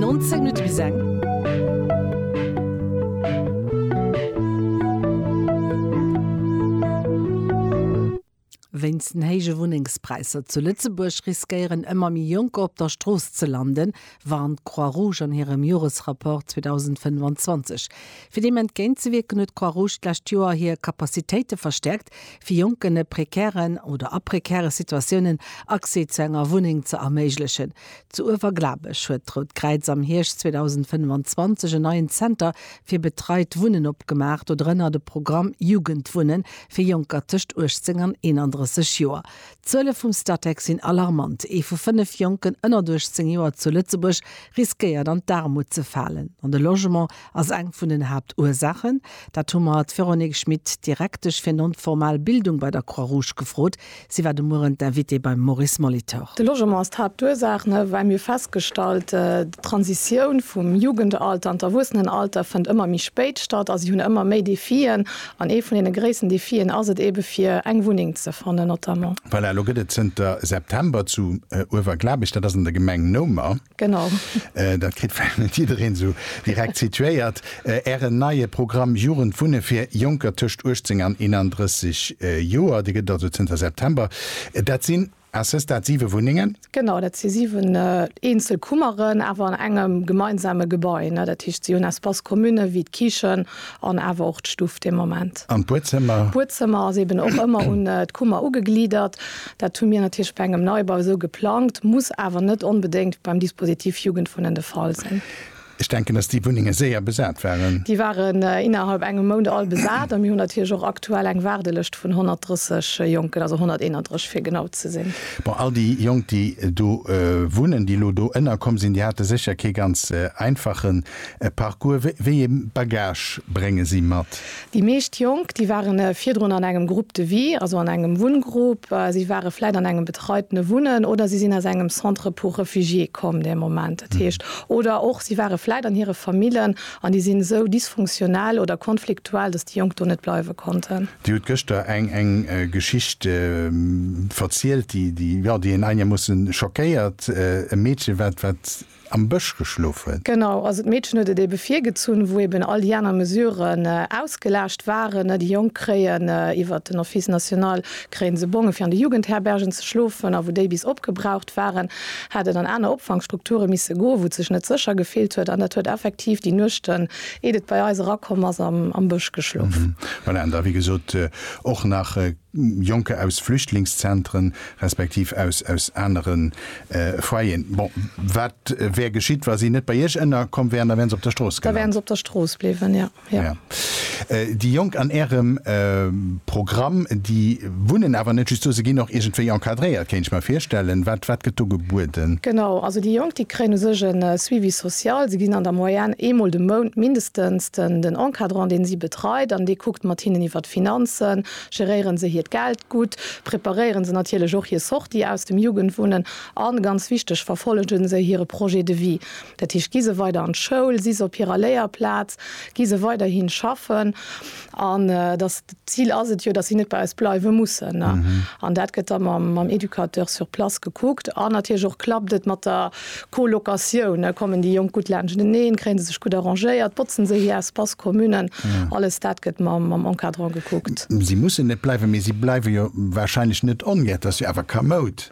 19 Minutte bis eng. Wéinst den héije Wunnengspräisser zu Lëtzebuerg riskéieren ëmmer méi Jonker op der Strooss ze landen, warnt d'Croix-Rouge an hirem Joresrapport 2025. Fir deem entgéint ze wierken, huet d'Croix-Rouge d'lescht Joer hir Capacitéite verstäerkt, fir Jonken e prekären oder a prekäre Situatiounen Accès zu enger Wunneng ze erméiglechen. Zu Uewerglabech huet d'Rout Kräiz am Hierscht 2025 en neien Zenter fir betreit Wunnen opgemaach, do drënner de Programm Jugendwunnen fir Jonker tëscht 18 an 31 Joer. D'Zuele vum Statec sinn alarmant, Ee vu fënnef Jonken ënnert 18 Joer zu Lëtzebuerg riskéiert an d'Aarmut ze falen an de Logement ass eng vun den Haaptursaachen, dat hu mer d'Véronique Schmit, Direktesch fir non-formal Bildung bei der Croix-Rouge, gefrot. Si war de Mueren d'Invitée beim Maurice Molitor. De Logement ass d'Haaptursaach, well mir festgestallt, d'Transitioun vum Jugendalter an d'Erwuessenenalter fënnt ëmmer méi spéit statt a si hunn ëmmer méi Defien. An ee vun deene gréissten Defien ass et eebe fir eng Wunneng ze fannen, notamment. Voilà, elo gëtt et zënter September zu Uewerglabech, dat ass an der Gemeng Noumer. Genau. Dat kritt vläicht net jiddereen esou direkt situéiert. Ären neie Programm Jugend Wunne fir Jonker tëscht 18 an 31 Joer, dee gëtt also zënter September. Dat sinn, a ce stade, siwe Wunnengen? Genau, dat si siwen eenzel Kummeren, awer an engem gemeinsame Gebai. Dat heescht, si hunn Espaces communs wéi d'Kichen an awer och d'Stuff de moment. An d'Buedzëmmer? D'Buedzëmmer ass eeben och ëmmer un d'Kummer ugeglidert. Dat hu mir natierlech bei engem Neibau esou geplangt, muss awer net onbedéngt beim Dispositif Jugendwohnen de Fall sinn. Ech denken, dass déi Wunnenge séier besat waren. Déi waren innerhalb engem Mount all besat a mir hunn natierlech och aktuell eng Waardelëscht vun 130 Jonken, also 131 fir genau ze sinn. Bon, all déi Jonk, déi do wunnen, déi elo do ënnerkomm sinn, déi hate sécher kee ganz einfache Parcours. Wéi ee Bagage brénge si mat? Déi meescht Jonk, déi ware virdrun an engem Groupe de vie, also an engem Wunngrupp, si ware vläit an engem betreitene Wunnen oder si sinn aus engem Centre pour réfugiés komm dee Moment. Dat heescht, oder och si ware vläit an hire Famillen an déi sinn esou dysfunktionell oder konfliktuell, dass déi Jonk do net bleiwe konnten. Dir hutt gëschter eng eng Geschicht verzielt, déi déi, jo, déi een einermoossen schockéiert. E Meedchen, wat, wat am Bësch geschlofen. Genau, also d'Meedchen huet et eebe virgezunn, wou eeben all déi aner Mesuren ausgelaascht waren. Déi Jonk kréien iwwer den Office national kréie se Bonge fir an de Jugendherbergen ze schlofen, a wou déi bis opgebraucht waren, hat et an aner Opfangstrukture misse goen, wou et sech net sécher gefillt huet. An dat huet effektiv déi Nuechten, iert et bei eis erakomm ass, am Bësch geschlof. Voilà, an da wéi gesot och nach Jonker aus Flüchtlingszentren, respektiv aus anere Foyeren. Bon, wat wär geschitt, wa si net bei Iech ënnerkomm wären? Da wären se op der Strooss gelant. Da wären se op der Strooss bliwwen, ja. Ja. Déi Jonk an Ärem Programm, déi wunnen awer net just do, se ginn och iergendwéi encadréiert, kéint ech mer virstellen. Wat gëtt do gebueden? Genau, also déi Jonk, déi kréien u sech e Suivi social. Se ginn an der Moyenne eemol de Mount mindestens den Encadrant, dee si betreit an dee kuckt mat hinnen iwwer d'Finanzen, Geréieren se hiert Geld gutt, preparéieren se natierlech och hir Sortie aus dem Jugendwunnen a, ganz wichteg, verfollegen se hire Projet de vie. Dat heescht, gi se weider an d'Schoul, si se op hirer Léierplaz, gi se weiderhi schaffen an dass, d'Zil ass et jo, dass si net bei eis bleiwe mussen. An dat gëtt da mam Educateur sur place gekuckt. An natierlech och, klappt et mat der. Colocatioun, da kommen déi Jonk gutt laanschteneen, kréie se sech gutt arrangéiert, botzen se hir Espace communen, alles dat gëtt mam Encadrant gekuckt. Si mussen net bleiwen, mee si bleiwe jo warscheinlech net ongär, 't ass jo awer kamoud.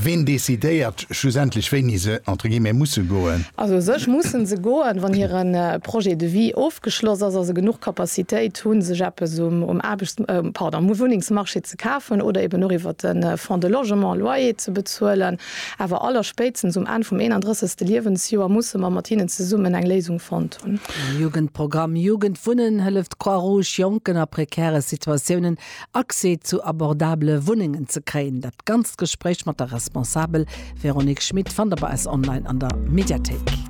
Ween decidéiert schlussendlech wéini se entre guillemets musse goen? Also u sech mussen se goen, wann hire Projet de vie ofgeschloss ass a se genuch Capacitéit hu sech eppes um Aarbechts-, pardon, um Wunnengsmarché ze kafen oder eben och iwwert de Fonds de logement Loyer ze bezuelen. Awer allerspäitstens um Enn vum 31. Liewensjoer musse mer mat hinnen zesummen eng Léisung fonnt hunn. Mam Jugendprogramm Jugendwunnen hëlleft d'Croix Rouge Jonken a prekäre Situatiounen, Accès zu abordabele Wunnengen ze kréien. Dat ganzt Gespréich mat der Responsabel Véronique Schmit fannt der bei eis online an der Mediathéik.